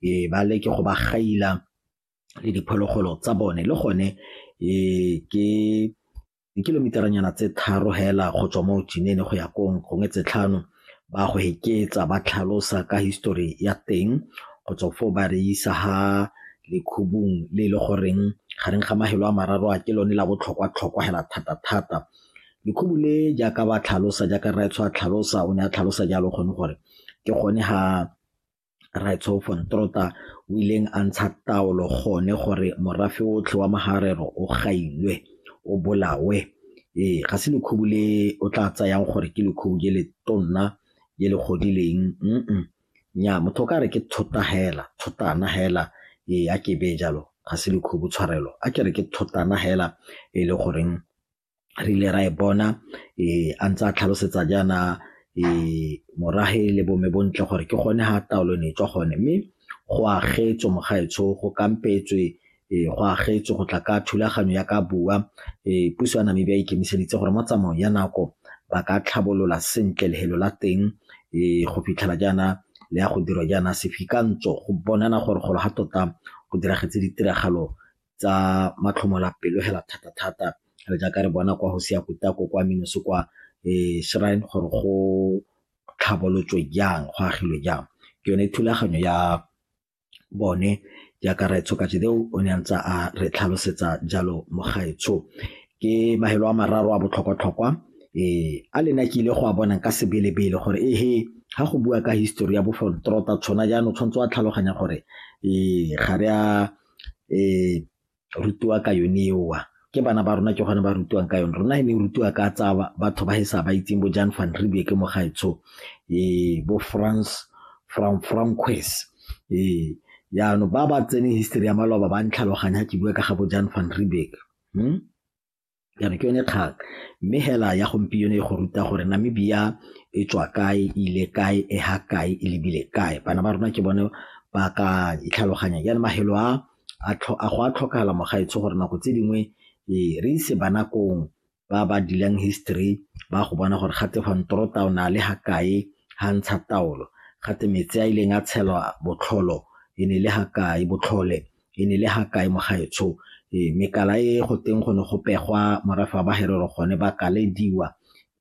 e ba leke go ba gaila le diphologolo tsa bone le gone e ke dikilometeranyana tse tharo hela go tswa mo jinene go ya kong gongwe tse tlhano ba go heketsa ba tlhalosa ka histori ya teng go tswa foo ba re isa ha lekhubung le e le goreng gareng ga mahelo a mararo a ke lone la botlhokwa tlhokwa hela thata thata lekhubu le jaaka ba tlhalosa jaaka rraetsho a tlhalosa o ne a tlhalosa jalo gone gore ke gone ha Rre Tsho von Trotha o ileng a ntsha taolo gone gore morafe otlhe wa Maharero o gailwe, o bolawe. Ee, ga se lekhubu le o tla tsayang gore ke lekhubu je le tonna je le godileng nnyaa motho o ka re ke thota hela, thotana hela ee a ke beye jalo ga se lekhubu tshwarelo a ke re ke thotana hela e le goreng re ile ra e bona um a ntse a tlhalosetsa jaana um morage le bome bontle gore ke gone ga taolo ne e tswa gone mme go agetswe mogaetsho go kampetswe um go agetswe go tla ka thulaganyo ya ka bua um puso ya namibia e ikemiseditse gore mo tsamaong ya nako ba ka tlhabolola sentle lehelo la teng um go fitlhela jaana le ya go dirwa jaana sefikantsho go bonana gore golo ga tota go diragetse ditiragalo tsa matlhomolapelo hela thata-thata re jaaka re bona kwa go sia kutako kwa minoso kwa um shrine gore go tlhabolotswe jang go agilwe jang ke yone thulaganyo ya bone jaaka raetsho ka jedeo o ne a ntse a re tlhalosetsa jalo mogaetsho ke mahelo a mararo a botlhokwa-tlhokwa ee a lena ke ile go a bonang ka sebelebele gore ehe ga go bua ka histori ya bofontrota tshwana jaanong tshwanetse wa tlhaloganya gore ee ga re a rutiwa ka yone eo. Ke bana ba rona ke gone ba rutiwang ka yone. Rona e ne e rutiwa ka tsa batho ba e sa ba itseng bo Jan Van Riebeeck mo gaetsho, bo Frans Frankowitz. Ee, jaanong ba ba tseneng history ya maloba ba ntlhaloganya ga ke bua ka ga bo Jan Van Riebeeck . Ke re ke yone kgang. Mme hela ya gompieno e go ruta gore Namibia e tswa kae, e ile kae, e ha kae, e lebile kae. Bana ba rona ke bone ba ka itlhaloganyang. Jaanong mafelo a, a go a tlhokagala mogaetsho gore nako tse dingwe re ise bana koo ba ba deal-ang history ba go bona gore gate van Trotter o ne a le ha kae ha ntsha taolo, gate metsi a ileng a tshelwa botlholo e ne e le ha kae, botlhole e ne le ha kae mo gaetsho ee mekala e go teng go ne go pegwa morafe wa baherero gone ba kalediwa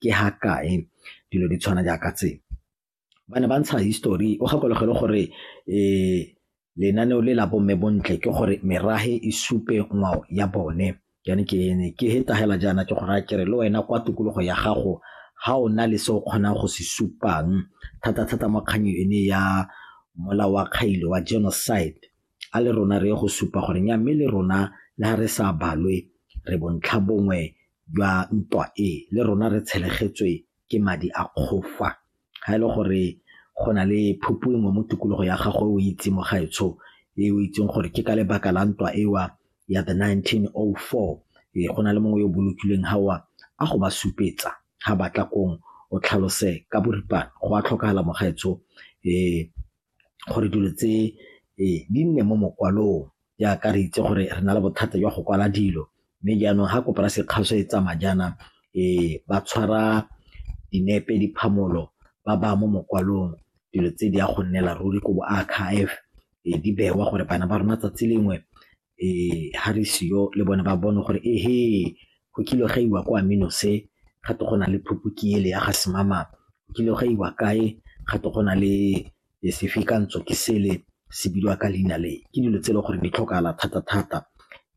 ke ha kae dilo di tshwana jaaka tse. Ba ne ba ntsha histori o gakologelwe gore lenaneo le la bo mme Bontle ke gore merafe e supe ngwao ya bone. Ke ne ke ne ke hetagela jaana ke go raya kere le wena kwa tikologo ya gago ga o na le se o kgonang go se supang thata-thata mo kganyo ene ya mola wa kgailo wa genocide a le rona re ye go supa gore nya mme le rona le ga re sa balwe re bontlha bongwe jwa ntwa e le rona re tshelegetswe ke madi a kgofa. ga e le gore go na le phupu engwe mo tikologo ya gago o itse mo gaetsho e o itseng gore ke ka lebaka la ntwa ewa ya the 1904 e go na le mongwe yo bolokilweng gawa a go ba supetsa ga batla kong o tlhalose ka boripana go a tlhokagala mo gaetsho um gore dilo tse di nne mo mokwalong jaaka re itse gore re na le bothata jwa go kwala dilo mme jaanong ga kopo ya sekgaso e tsamaya jaana ba tshwara dinepe, diphamolo ba baya mo mokwalong dilo tse di a go nnela ruri ko bo archive di bewa gore bana ba rona 'tsatsi lengwe ha re seyo le bone ba bone gore ehe go kile ga iwa kwa Minose ga te go na le phuphuki ele ya ga Semama, go kile ga iwa kae ga te go na le sefekantsho ke sele se bidiwa ka leina le. Ke dilo tse e leng gore di tlhokagala thata-thata,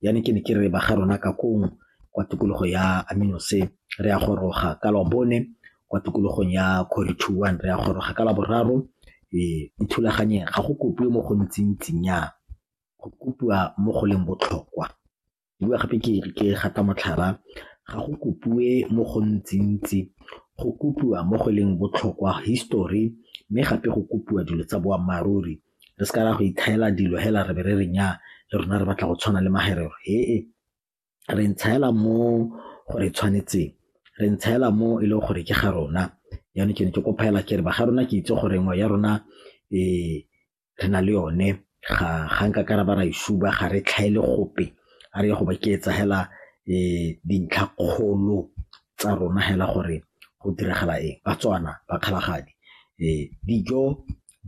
jaanong ke ne ke re ba ga rona ka koo kwa tikologo ya Minose re a goroga ka Labone kwa tikologong ya Quarry Two One, re a goroga ka Laboraro ithulaganye ga go kopiwe mo go ntsi-ntsi nnyaa. go kopiwa mo go leng botlhokwa. Ke bua gape ke re ke gata motlhala, ga go kopiwe mo go ntsi-ntsi, go kopiwa mo go leng botlhokwa, history mme gape go kopiwa dilo tsa boammaaruri. Re se ka ra go itlhaela dilo fela re be re re nnyaa le rona re batla go tshwana le magerero, he-e re ntshaela mo go re tshwanetseng, re ntshaela mo e leng gore ke ga rona jaanong ke ne ke kopa fela ke re ba ga rona ke itse gore ngwao ya rona e. re na le yone ga nka ka ra ba ra e suba ga re tlhaele gope a re ye go ba ke etsa hela dintlha kgolo tsa rona hela gore go diragala eng Batswana bakgalagadi dijo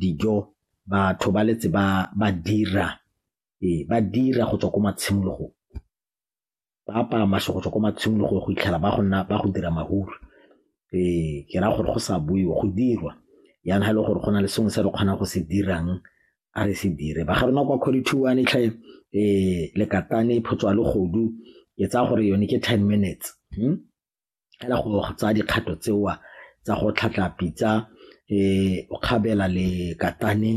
dijo batho ba letse ba dira go tswa ko matshimologong. ba apaya mašokotšo ko matshimologong go fitlhela ba go nna, ba go dira mahudu. Ee, ke raya gore go sa boiwe, go dirwa yana ga e le gore go na le sengwe se re kgonang go se dirang, a re se dire. Ba ga rona kwa Quality-one tlhe Lekatane, Phutshwalegodu, ke tsaya gore yone ke ten minutes fela go tsaya dikgato tseo tsa go tlhatlha pitsa o kgabela lekatane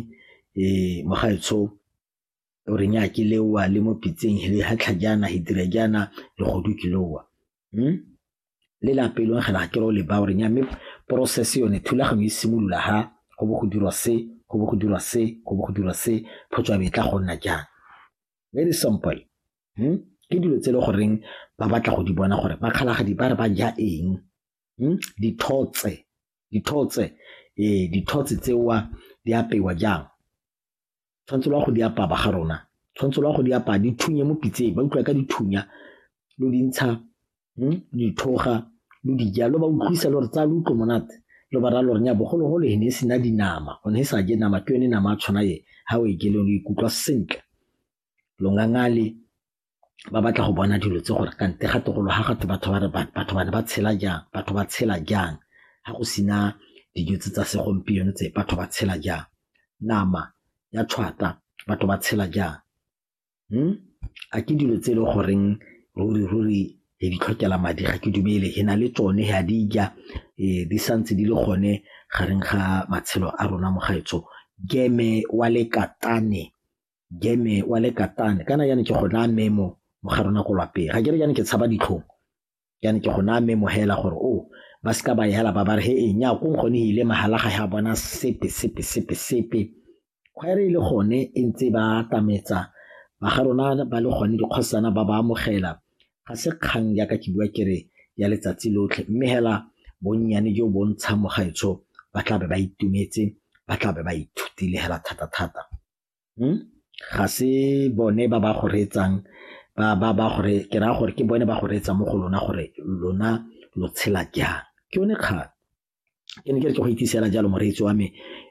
mo gaetsho. o re nya ke lewa le mo pitseng hele ha tlha jana he dire jana le go du ke lowa hmm? le la pelo ga la ke ro le ba o re nya me process yone thulaganyo e simolola ha go bo go dirwa se go bo go dirwa se go bo go dirwa se photswa be tla go nna jang very simple hmm? ke dilo tse le goreng ba batla go di bona gore ba kgalagadi ba re ba ja eng hmm? dithotse dithotse ee dithotse tsewa di apewa jang tshwanetse lo ya go di apaya ba ga rona, tshwanetse lo ya go di apaya di thunye mo pitseng, ba utlwa ka dithunya lo di ntsha dithoga lo di ja, lo ba utlwisa lo re tsaya lo utlwe monate lo ba raya lo re nya bogologolo e ne e sena dinama go ne e sa je nama ke yone nama a tshwana e ga o e jeleng o ikutlwa sentle longangale ba batla go bona dilo tse gore kante ga togolo ga gatwe batho ba re batho ba ne ba tshela jang batho ba tshela jang ga go sena dijo tse tsa segompieno tse batho ba tshela jang nama ya tshwata batho ba tshela jang hmm? a ke dilo tse e le goreng ruri ruri e di tlhokela madi ga ke dumele e na le tsone ga di ja e, di santse di le gone gareng ga matshelo a rona mo gaetsho geme wa lekatane game wa le katane kana jane ke go naya memo mo gare o nako lwapeng ga ke re jane ke tshaba ditlhong jane ke go naya memo hela gore o oh, ba se ka ba yela ba ba re he e nya ko nkgone e ile magala ga ya bona sepe sepe sepe sepe kgwere e le gone e ntse ba atametsa ba ga rona ba le gone dikgosana ba ba amogela ga se kgang jaaka ke bua kere ya letsatsi lotlhe mme hela bonnyane jo bo ntshang mogaetsho ba tlabe ba itumetse ba tlabe ba ithutile hela thata-thata ga se bone ba ba go reetsang ke raya gore ke bone ba go reetsa mo go lona gore lona lo tshela jang ke yone kgang ke ne ke re ke go itsise fela jalo moreetsi wa me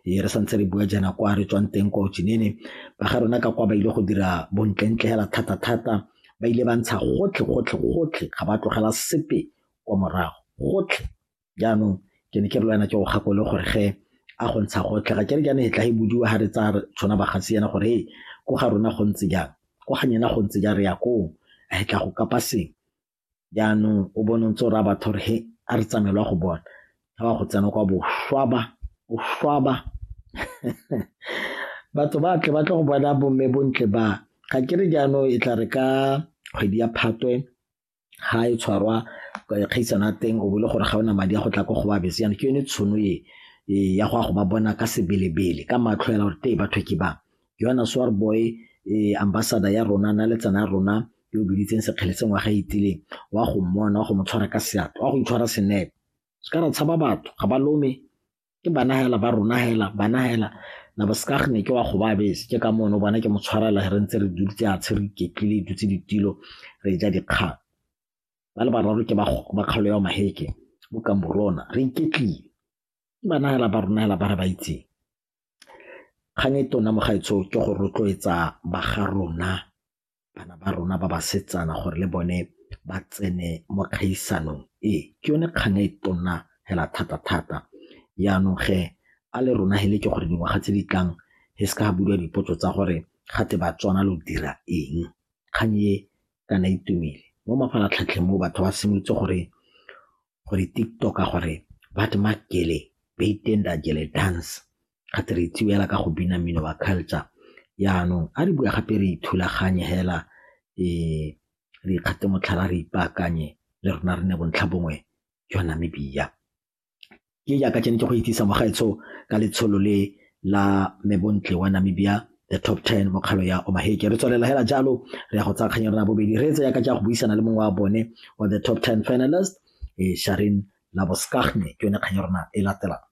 ee, re santse re bua jaana kwa re tswang teng kwa otsinene ba ga rona ka kwa ba ile go dira bontlentle fela thata-thata ba ile ba ntsha gotlhe gotlhe gotlhe ga ba tlogela sepe kwa morago gotlhe jaanong ke ne ke re le wena ke go gakole gore ge a go ntsha go tlega ke re jaana e tla e bodiwa ga re tsaya tshwana bagasi yana gore e ko ga rona go ntse jang ko ga nyena go ntse jang re ya koo a e tla go kapa seng jaanong o bone ntse o raya batho gore he a re tsamaelwa go bona ga ba go tsena kwa boshwaba boshwaba batho ba tle ba tle go bona bomme bontle ba ga ke re jaanong e tla re ka kgwedi ya phatwe ga e tshwarwa kgaisano ya teng o bo le gore ga ona madi a go tla ko go ba bese yana ke yone tshono e e ya go a go ba bona ka sebelebele ka matlho yana gore tee batho ke ba ke yona swar boy e ambassador ya rona na letsana ya rona yo o biditseng sekgele se ngwaga itileng wa go mmona wa go mo tshwara ka seatlo wa go itshwara senepe se ka re tshaba batho ga ba lome ke bana hela ba rona hela bana hela na bo seka gene ke wa go ba bese ke ka mono bona ke mo tshwarela re ntse re dutse a tshwere iketlile dutse ditilo re ja dikgang ba le bararo ke ba ba kgalo ya maheke bo ka morona re iketlile ke bana hela ba rona hela ba re ba itseng kgang e tona mo gaetsho ke go rotloetsa ba ga rona bana ba rona ba basetsana gore le bone ba tsene mo kgaisanong e. Ke yone kgang e tona hela thata-thata. Jaanong ge a le rona he le ke gore dingwaga tse di tlang he se ka ga buiwa dipotso tsa gore gate Batswana lo dira eng, kgang e kana e tumile. Mo mafaratlhatlheng mo batho ba simolotse gore gore TikTok a gore what maak julle buiten dat julle dans ga twe re itsewe fela ka go bina mmino wa culture. Jaanong a re bue gape re ithulaganye fela re ikgathe motlhala re ipaakanye le rona re nne bontlhabongwe jwa Namibia. Ke jaaka ke ne ke go itsise mo gaetsho ka letsholo le la Mme Bontle wa Namibia the top 10 mo kgalo ya omaheke re tswelela hela jalo re ya go tsaya kgang ya rona bobedi re tse ya ka ja go buisana le mongwe wa bone wa the top 10 finalist e sharin laboskahne ke yone kgang ya rona e latelang